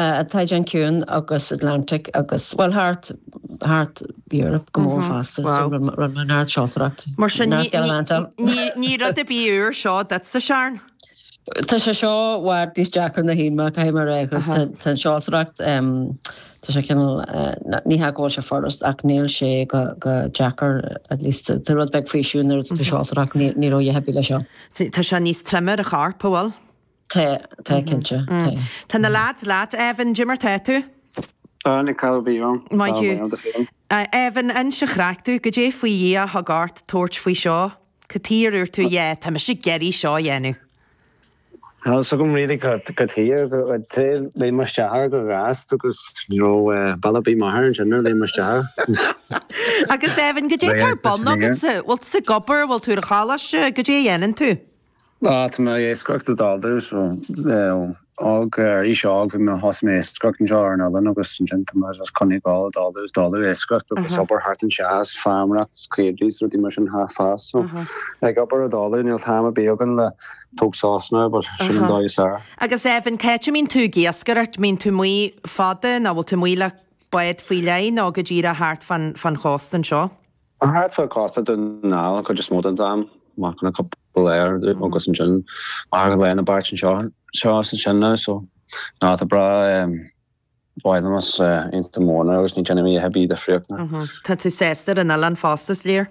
tAigéan Ciúin agus Atlantic agus, bhuel, thart, thart Europe go mór fosta, so rinne mé neart seoltóireacht. Mar sin, ní rud ar bith úr seo duit, a Sheáin. Tá sé seo i bhfad níos deacra ná a shíl mé, caithfidh mé a rá, agus tá an seoltóireacht, tá sé cineál, ní hea go bhfuil sé furast ach níl sé go deacair, at least tá rud beag faoiseamh nuair atá tú ag seoltóireacht, ní raibh a dhath ar bith leis seo. Tá sé níos troime ar an chorp, an bhfuil? Tá, tá, cinnte, tá. Tá na leaids leat. Evan, dé mar tá tú? Tá, níl caill orm. Maith thú. Evan, inis an chraic domh. Goidé faoi Dhia a thug ort tabhairt faoi seo? Cad chuige ar dhúirt tú, yeah, tá mise ag iarraidh seo a dhéanamh. Níl fhios agam really cad, cad chuige ar léim mé isteach chomh gasta agus, you know, probably m'athair ansin a léim isteach. Agus Evan, goidé tá ar bun agatsa? Bhfuil tú ag obair, bhfuil tú ar an choláiste, goidé a dhéanann tú? Tá mé ag iascaireacht i dtólamh, ó, ó aois óg, bhí mé, thosaigh mé ag iascaireacht anseo ar an oileán agus ansin tá mé just ag coinneáil ag dul dó, i dtólamh ag iascaireacht agus obair thart anseo is feirmeoireacht, is caoirigh, is rudaí mar sin thart fosta. So, ag obair i dtólamh, níl am ar bith againn le tóg sos ná, but sin an dóigh is fearr. Agus Evan, cá háit a mbíonn tú ag iascaireacht, mbíonn tú amuigh fada nó bhfuil tú amuigh le bád faoi leith nó go díreach thart fán, fán chósta anseo? Thart fán chósta don chuid is mó den am, amach le cúpla lá ar dtús agus ansin mar gheall ar na bearta anseo seo is ansin ná so, ná tá breá mhaith liom is ionta móna agus ní déanaim a dhath ar bith difríocht ná. Tá tú sásta ar an oileán fosta, is léir.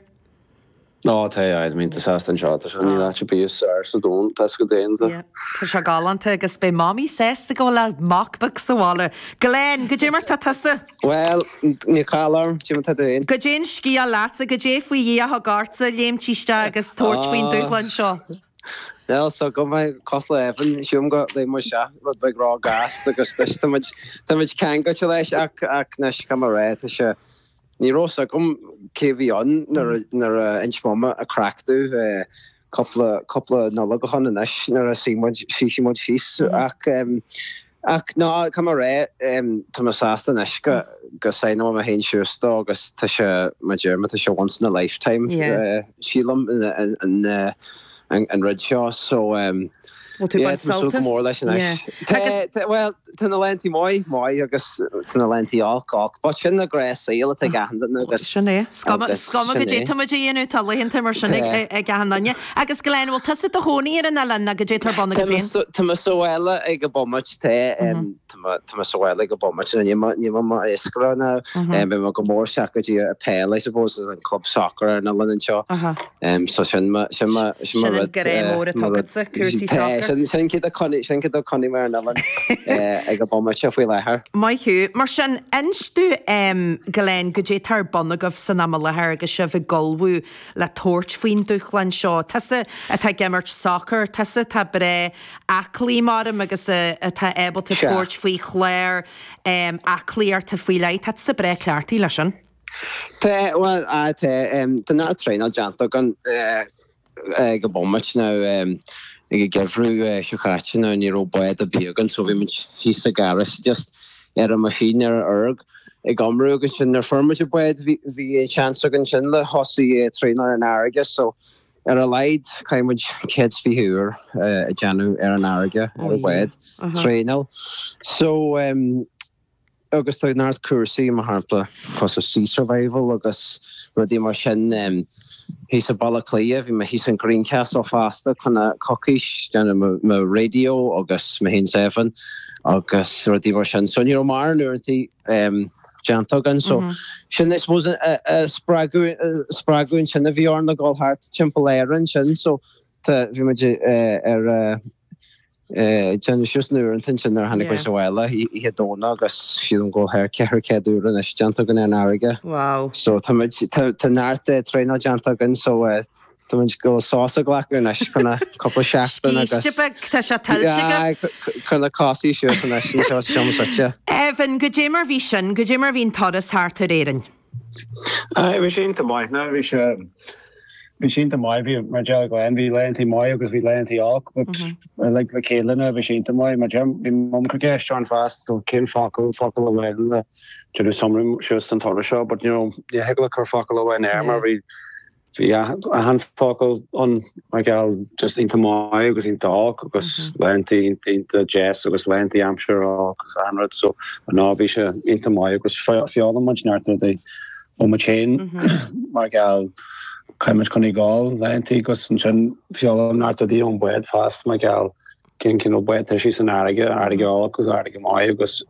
Ó tá, aye, aye, tá mé iontach sásta anseo, tá sé níl áit ar bith is fearr sa domhan, tá is go deimhin do. Tá sé galánta agus beidh Mamaí sásta go bhfuil a mac beag sa bhaile. Glenn, goidé mar tá tusa! Bhuel, níl caill orm, cím atá dúinn. Goidé an scéal leatsa, goidé faoi Dhia a thug ortsa léimt isteach agus tabhairt faoin dúshlán seo. Bhuel, so go maith cosúil le Evan, sílim gur léim muid isteach, rud beag róghasta agus anois tá muid, tá muid ceangailte leis ach, ach anois cá mba ré, tá sé, ní raibh a fhios agam cé bhí ann nuair a, nuair a inseoidh mé an chraic duit eh, cúpla cúpla Nollaig ó shin anois nuair a shuigh muid shuigh muid síos ach ach ná cuma ar é tá mé sásta anois go gur shaighneáil mé mé féin suas dó agus tá sé mar a déarfá tá sé once in a lifetime sílim an an an rud seo so tá mé ag súil go mór leis anois tá well Tá na laethanta maith maith agus tá na laethanta olc olc. But sin an gnáthshaol atá ag achan duine agus. Sin é. Is cuma goidé tá muid a dhéanamh tá laethanta mar sin ag achan duine. Agus Glen, bhfuil tusa i do chónaí ar an oileán nó goidé tá ar bun agat féin? Tá mé sa bhaile ag an bhomaite, tá, tá mé sa bhaile ag an bhomaite, tá, níl mé i m'iascaire ná, beidh mé go mór isteach go dtí an pheil I suppose, an club soccer ar an oileán anseo. So sin mo rud. Sin an grá mór atá agatsa, cúrsaí soccer. Tá, sin cad a choinnigh, sin cad a choinnigh mé ar an oileán ag an bomaite faoi láthair. Maith thú. Mar sin, inis dúinn Glenn goidé tá ar bun agaibh san am i láthair agus sibh ag ullmhú le tabhairt faoin dúshlán seo. Tusa atá ag imirt soccer, tusa atá breá aclaí mar a deirim agus atá ábalta tabhairt faoi chlár aclaíochta faoi leith, tá tusa breá cleachtaithe leis sin. Tá, bhuel, á, tá, tá na traenáil déanta againn ag an bomaite ná ag an gheimhreadh seo caite ná ní raibh bád ar bith againn so bhí muid síos sa garage just ar an machine ar an erg ag iomramh agus ansin nuair a fuair muid an bád bhí an seans againn ansin le thosaigh traenáil ar an fharraige so ar a laghad caithfidh muid 120 uair a dhéanamh ar an fharraige ar an bhád traenáil so agus tá neart cúrsaí, mar shampla, cosúil Sea Survival agus rudaí mar sin, thíos i Baile Átha Cliath. Bhí mé thíos in Greencastle fosta fá choinne coicís, déanamh mo raidió agus mo haon seven agus rudaí mar sin. So ní raibh mórán uaireantaí déanta againn. So sin I suppose a spreagadh, spreagadh ansin a bhí orainn a dhul thart timpeall Éireann sin. So Tá, bhí muid ag déanamh suas na huaireantaí nuair a tháinig muid abhaile oíche Domhnaigh agus sílim go bhfuil thar 400 uair anois déanta againn ar an fharraige. Wow. So tá muid, tá neart traenáil déanta againn so tá muid ag gabháil sos a ghlacadh anois fá choinne cúpla seachtain agus. Scíste beag, tá sé tuillte agaibh. Aye, cuir na cosa suas anois anseo sa seomra suite. Evan, goidé mar bhí sin, goidé mar bhí an turas thart ar Éirinn? Bhí sé iontach maith ná bhí sé bhí sé iontach maith bhí mar a deir Glenn bhí laethantaí maith agus bhí laethantaí olc but mm -hmm. uilig le chéile ná bhí sé iontach maith mar a deir bhí mum ag cur ceist orm fosta so cén focal focal amháin le déanamh summary suas don turas seo but you know ní thig leat cur focal amháin air mar bhí Bhí achan focal ann mar gheall just iontach maith agus iontach olc agus laethantaí iontach deas agus laethantaí aimsir olc agus achan rud so ná bhí sé iontach maith agus d'fhoghlaim muid neart rudaí ó muid féin mar gheall chaith muid chun i gcáil laethantaí agus ansin d'fhoghlaim muid neart rudaí ón bád fosta mar gheall cén cineál bád atá sí san fharraige farraige olc agus farraige maith agus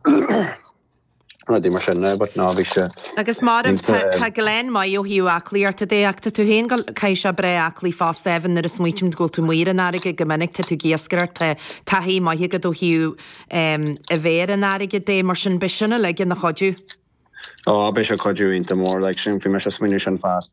rudaí mar sin now but ná bhí sé Agus mar a deirim, tá, línte. tá Glen maith ó thaobh aclaíochta de ach tá tú féin go, caithfidh tusa bheith aclaí fosta Evan nuair a smaoitim go bhfuil tú amuigh ar an fharraige go minic tá tú ag iascaireacht tá taithí maith agat ó thaobh em a bheith ar an fharraige de mar sin beidh sin uilig ina chuidiú. Ó, beidh sé cuidiú iontach mór like sin bhí mise smaoineamh sin fosta.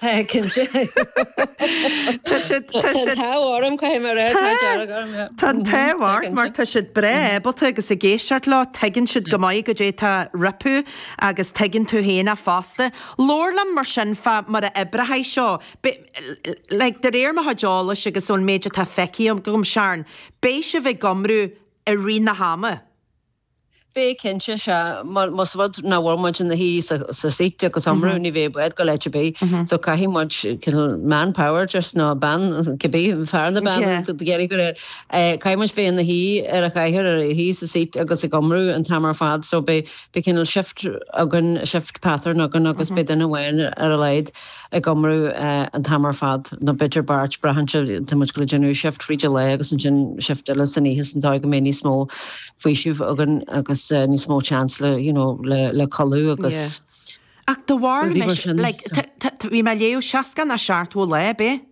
Tá, cinnte. Tá siad, tá siad. Tá an t-ádh orm, caithfidh mé a rá, t-ádh dearg orm, yeah. Tá an t-ádh ort mar tá siad breá ábalta agus ag éisteacht leo, tuigeann siad go maith goidé tá rompu agus tuigeann tú féin fosta. Labhair liom mar sin fá mar a oibreoidh seo, like, de réir mo chuid eolais agus ón méid atá feicthe agam, Sharon, beidh sibh ag iomrú i rith na hama. Beidh cinnte, sea. Más rud nach bhfuil muid ina shuí sa seat agus iomramh, ní bheidh bád ag gabháil áit ar bith. So caithfidh muid cineál manpower just nó bean, cibé, fear nó bean a d'fhéadfadh cur air. Caithfidh muid bheith ina shuí ar an chathaoir, ar a shuí sa seat agus ag iomramh an t-am ar fad. So beidh cineál shift againn, shift pattern againn agus beidh duine amháin ar a laghad. ag iomramh an t-am ar fad, nó b'fhéidir beirt, braitheann sé, tá muid ag gabháil a dhéanamh shift fríd an lae agus ansin shift eile san oíche san dóigh go mbeidh níos mó faoisimh againn agus níos mó chance le you know le le codladh agus Ach do bharr, bhí mé ag léamh 60 nó 70 lá ar bith.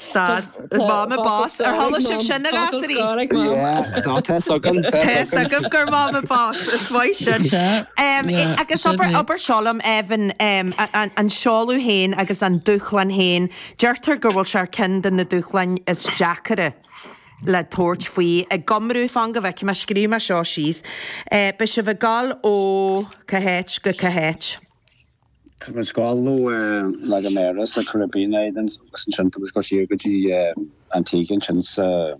Stad. Mama Boss. Ar chuala sibh sin a ghasúraí? Yeah, ná tá fhios agam, tá fhios agam. Tá fhios agam gur Mama Boss is maith sin. Agus abair seo liom, Evan, an seoladh féin agus an dúshlán féin, deirtear go bhfuil sé ar cheann de na dúshláin is deacaire le tabhairt faoi ag iomramh, fan go bhfeicfidh mé, scríobh mé seo síos. Beidh sibh ag gabháil ó cá háit go cá háit. Tugann scála nó La Gomera sa Caribbean é den saghas ansin, tugann scála siar go dtí Antigua ansin sa.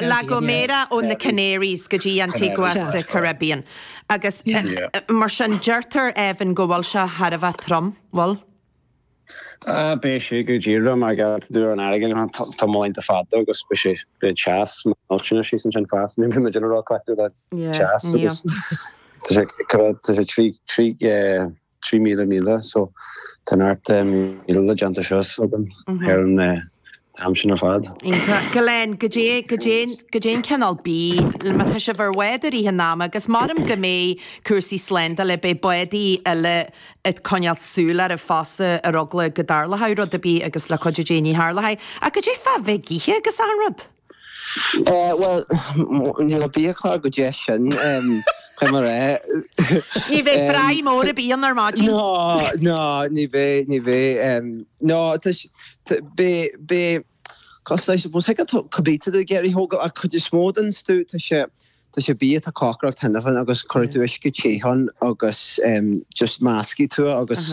La Gomera ó na Canaries go dtí Antigua sa Caribbean agus mar sin deirtear Evan go bhfuil sé thar a bheith trom, bhfuil? Beidh sé go díreach mar gheall ar an fharraige mar tá muid iontach fada agus beidh sé beidh teas millteanach thíos ansin fad ní bheidh muid ina rá cleachtadh le teas agus tá sé cad tá sé trí trí trí míle míle so tá neart míle le déanta seo so ar an t-am sin ar fad. Glenn, goidé, goidé, goidé an cineál bídh, má tá sibh ar bhád i rith an ama agus m'anam go mbeidh cúrsaí slándála, beidh bádaí eile ag coinneáil súil oraibh fosta ar eagla go dtarlódh rud ar bith agus le cuidiú Dé ní tharlóidh ach goidé fá bheith ag ithe agus achan rud. Eh bhuel níl an biachlár chomh deas sin em cad mar é? Ní bheidh fry mór ar bith ar maidin. Ná ná ní bheidh ní bheidh em ná tá Beidh cos I suppose thig leat cibé atá tú ag iarraidh a thógáil ach cuid is mó den stuif tá sé tá sé bia atá cócaireacht cheana féin agus cuirfidh tú uisce te ann agus just meascfaidh tú é agus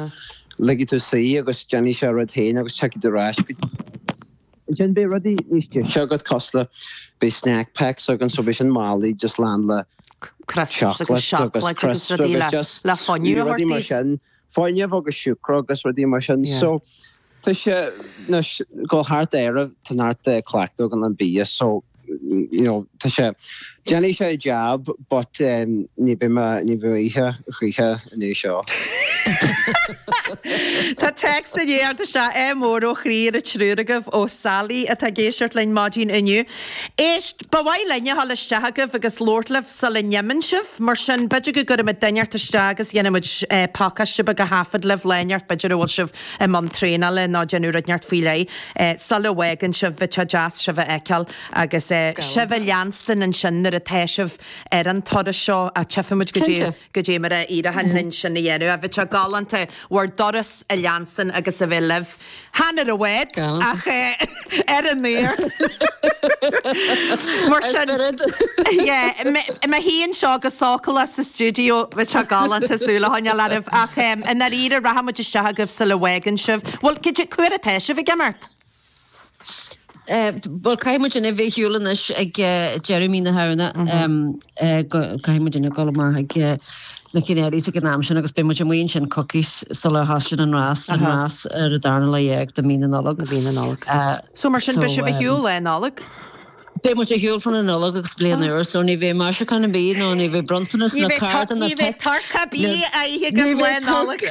ligfidh tú suí agus déanfaidh sé a rud féin agus tiocfaidh tú ar ais go dtí an oileán. Ansin beidh rudaí níos deise agat cosúil le beidh snack packs againn so beidh sin málaí just lán le crisps agus seacláid agus rudaí le fuinneamh a thabhairt daoibh. foirgneamh agus siúcra agus rudaí mar sin. Yeah. So tá sé nós dul thart Éire tá neart cleachtadh againn leis an bia so you know tá sé déanfaidh sé a jab but um, ní bheidh mé ní bheidh ag ithe choíche i ndiaidh seo. Tá text anseo ádh mór ó chroí ar an triúr agaibh ó Sally atá ag éisteacht linn maidin inniu. Éist Ba mhaith linn a dhul isteach chugaibh agus labhairt libh sula n-imíonn sibh, mar sin b'fhéidir go gcuirfimid duine inteacht isteach agus dhéanfaidh muid pacáiste beag a thaifead libh lá inteacht, b'fhéidir a bhfuil sibh i mbun traenála nó ag déanamh rud inteacht faoi leith sula bhfágann sibh, bheadh sé deas sibh a fheiceáil agus sibh a leanstan ansin nuair atá sibh ar an turas seo ach tchífimid cad é. Cinnte. Cad é mar a éireochaidh linn sin a dhéanamh. Bheadh sé galánta, bhur dturas a leanstan agus a bheith libh. Chan ar an bhád, ach ar an aer. Mar sin, yeah, mé i mo shuí anseo go sócúlach sa stiúideo, bheadh sé galánta súil a choinneáil oraibh, ach i ndáiríre, rachaidh muid isteach chugaibh sula bhfágann sibh. Bhuel, cad é, cá huair atá sibh ag imeacht? Bhuel, caithfidh muidinne a bheith ar shiúl anois ag deireadh mí na Shamhna, caithfidh muidinne a dhul amach chuig na Canaries ag an am sin agus beidh muid amuigh ansin coicís sular thosaíonn an rás, an rás ar an darna lá dhéag de mhí na Nollag. So mar sin, beidh sibh ar shiúl Lá Nollag? Beidh muid ar shiúl fá choinne an Nollaig agus Bliain Úr, so ní bheidh maisiúcháin ar bith ná ní bheidh bronntanas ná cardanna ná. Ní bheidh turcaí ar bith le hithe agaibh Lá Nollag.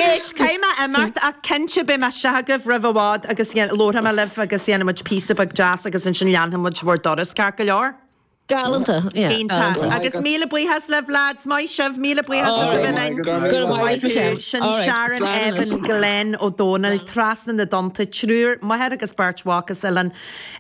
Éist, caithfidh mé imeacht ach cinnte beidh mé isteach chugaibh roimh i bhfad agus labharfaidh mé libh agus dhéanfaidh muid píosa beag deas agus ansin leanfaidh muid bhur dturas ceart go leor. Galanta, yeah. Iontach. Agus míle buíochas le Vlad. Maith sibh, míle buíochas as a bheith linn. Go raibh maith agat. Sin Sharon, Evan, Glenn, Ó Dónaill, trasna na dtonnta, triúr, máthair agus beirt mhac as Oileán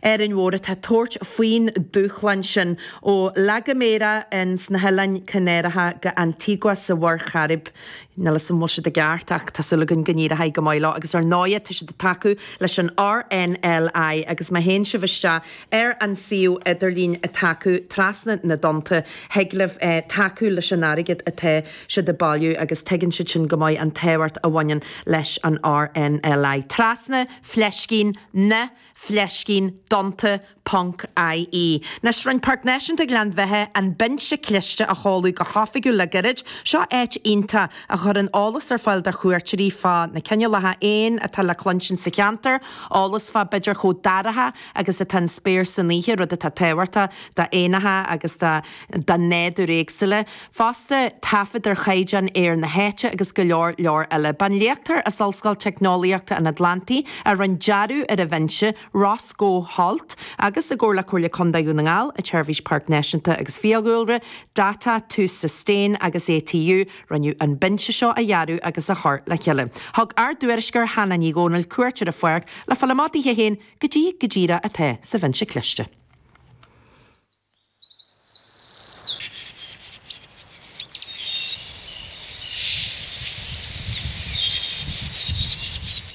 Árainn Mhór atá tabhairt faoin dúshlán sin ó La Gomera ins na hOileáin Chanáracha go Antigua sa Mhuir Chairib. Níl 'fhios a'm an bhfuil siad i gceart ach tá súil againn go n-éireoidh go maith leo agus ar ndóighe tá siad ag tacú leis an RNLI agus má théann sibh isteach Ar an suíomh idirlín atá acu Trasna na dTonnta, thig libh tacú leis an airgead atá siad ag bailiú agus tuigeann siad sin go maith an tábhacht a bhaineann leis an RNLI. Trasna fleiscín na fleiscín dtonnta ponc IE Anois, rinne Páirc Náisiúnta Ghleann Bheithe, An Binse Cliste a sheoladh go hoifigiúil le gairid. Seo áit iontach a chuireann eolas ar fáil do chuairteoirí fá na cineálacha éan atá le cluinstin sa cheantar, eolas fá b'fhéidir chomh daraithe agus atá an spéir san oíche, rud atá tábhachtach do éanacha agus do nádúr éagsúla. Fosta, taifead ar chaighdeán aeir na háite agus go leor leor eile. Ba iad léachtóir as Ollscoil Teicneolaíochta an Atlantaigh a rinne dearadh ar an bhinse, Roscoe Holt, agus i gcomhar le Comhairle Contae Dhún na nGall, an tSeirbhís Páirceanna Náisiúnta agus Fiadhúlra, Data to Sustain agus ATU, rinneadh an binse seo a dhearadh agus a chur le chéile. Thug ár dtuairisceoir Hannah Ní Dhomhnaill cuairt ar an pháirc le fáil amach di féin goidé go díreach atá sa Bhinse Cliste.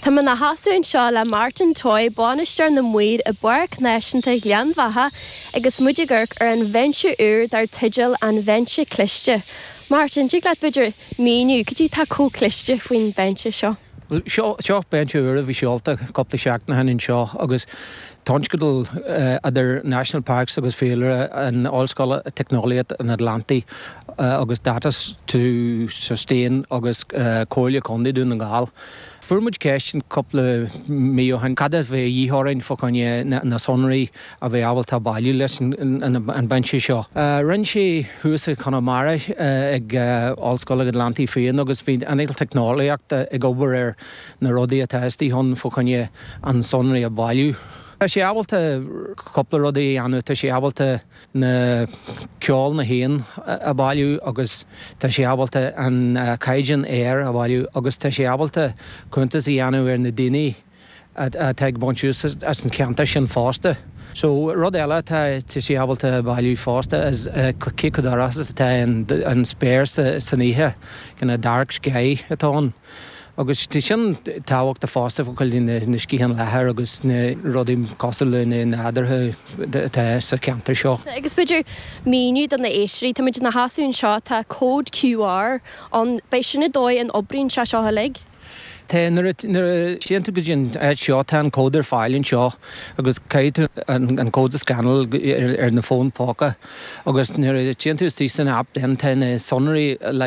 Tá mé mo sheasamh anseo le Martin Toye, Bainisteoir na Maoir i bPáirc Náisiúnta Ghleann Bheatha agus muid ag amharc ar an bhinse úr dar teideal An Binse Cliste. Martin, tig leat b'fhéidir míniú cad é atá chomh cliste faoin bhinse seo? Is é seo binse úr a bhí seolta cúpla seachtain ó shin anseo agus tionscadal idir National Parks agus Fiadhúlra, Ollscoil Teicneolaíochta an Atlantaigh agus Data to Sustain agus Comhairle Contae Dhún na nGall. Fuair muid ceist cúpla mí ó shin cad a bheadh de dhíth orainn fá choinne na sonraí a bheith ábalta bailiú leis an bhinse seo. Rinneadh é thuas i gConamara ag Ollscoil an Atlantaigh féin agus bhí an teicneolaíochta ag obair ar na rudaí atá istigh ann fá choinne an sonraí a bhailiú. Tá sé ábalta cúpla rudaí a dhéanamh, tá sé ábalta na ceol na héan a bhailiú agus tá sé ábalta an caighdeán aeir a bhailiú agus tá sé ábalta cuntas a dhéanamh ar na daoine, atá ag baint úsáid as an cheantar sin fosta. So rud eile atá sé ábalta a bhailiú fosta is cé chomh dorcha is atá an spéir san oíche, kind of dark sky atá ann. Agus tá sin tábhachtach fosta fá choinne na sciathán leathair agus na rudaí cosúil le na nádúrtha atá sa cheantar seo. Agus an féidir míniú do na éisteoirí, táimid inár seasamh anseo, tá code QR ann, an é sin an dóigh a n-oibríonn sé seo uilig. Tá, nuair a, nuair a théann tú go dtí an áit seo, tá an cód ar fáil anseo agus caithfidh tú an, an cód a scannáil ar, ar na fóin póca agus nuair a théann tú isteach san app then tá na sonraí, like,